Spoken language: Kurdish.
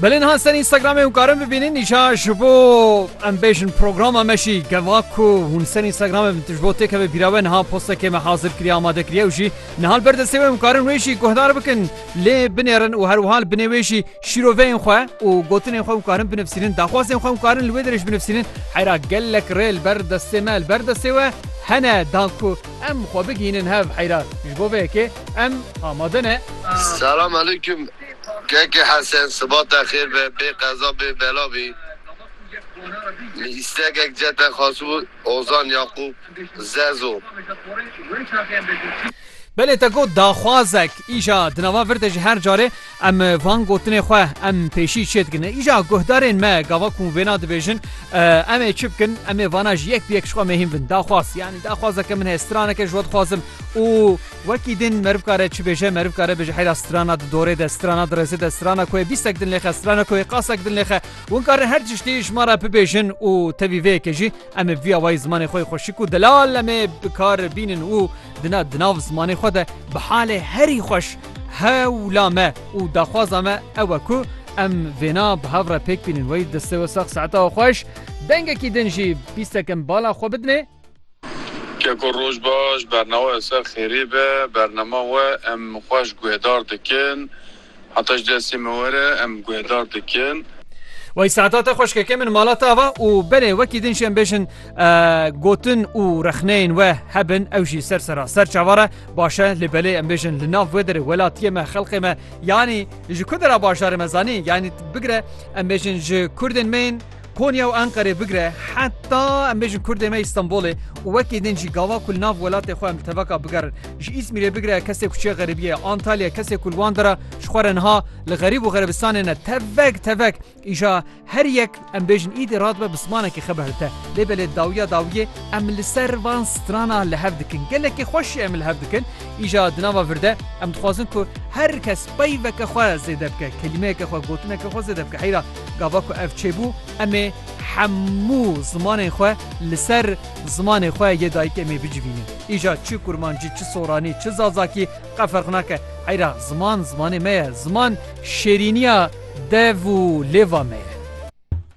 Belê niha ser Instagramê hûn karin bibînin îşa ji bo em bêjin programa me jî geva ku hûn ser Instagramê bin tu ji bo têkevê bîra we niha postekê me hazir kiriye amade kiriye û jî nihal ber destê we hûn karin wê jî guhdar bikin lê binêrin û her wihal binê wê jî şîroveyên xwe û gotinên xwe hûn karin binivsînin daxwazên xwe hûn karin li wê derê jî binivsînin heyra gelek rê li ber destê me li ber destê we hene dan ku em xwe bigihînin hev heyra ji bo vê yekê Em amade ne. Selam aleyküm Keke Hesen sibata xêr be bê qeza bê bela bî Min îstekek ce te xwesibû Ozan Yaqûb Zezo. Belê te got daxwazek îja di nava vir de ji her carê Em van gotinê xwe em pêşî çêdikin. Îja guhdarên me gava ku vêna dibêjin em ê çi bikin em ê vana ji yek bi yek ji xwe mehîm bin. Daxwaz yanî daxwazeke min heye straneke ji we dixwazim û wekî din meriv kare çi bêje meriv kare bêje heyra strana di dorê de strana di rêzê de strana ku bîstek din lêxe strana ku qasek din lêxe win karin her tiştî ji me re bibêjin û tevî vêyekê jî Em ê via wayî zimanê xwe yê xweşik û delal em ê bi kar bînin û di na di nav zimanê xwe de bi halê herî xweş hewla me û daxwaza me ew e ku em vêna bi hev re pêk bînin wey destê we sax saeta we xweş dengekî din jî pîsek em bala xwe bidinê. Keko roj baş, bernawa li ser xêrê be, bernama we em xweş guhedar dikin. Heta ji destê me were em guhedar dikin. Wey Se'da te xweşkeke min mala te ava û belê wekî din şêm bêjin gotin û rexneyên we hebin ew jî ser sera ser çavar e baş e lê belê em bêjin li nav wê derê welatiyê me xelqê me yanî ji ku dera bajarê me zanî yanî bigire em bêjin ji kurdên me yên Konya û Enqerê bigire heta em bêjin Kurdê me Îstanbulê û wekî din jî gava ku li nav welatê xwe em li tevaka bigerin. Ji Îzmîrê bigire kesê ku çê xeribiyê, Antalya kesê ku li wan de re ji xwe re niha li xerîb û xerebistanê ne tevek tevek îja her yek em bêjin îdî radibe bi zimanekî xwe bihilite. Lê belê dawiya dawiyê em li ser van strana li hev dikin. Gelekî xweş jî em li hev dikin. Îja di nava vir de em dixwazin ku her kes peyveke xwe zêde bike, kelîmeyeke xwe, gotineke xwe zêde bike. Heyra Gava ku ev çêbû em ê hemû zimanên xwe li ser zimanê xwe yê dayikê em ê bicivînin. Îja çi kurmancî, çi soranî, çi zazakî qe ferq nake. Heyra ziman zimanê me ye. Ziman şêrîniya dev û lêva me ye.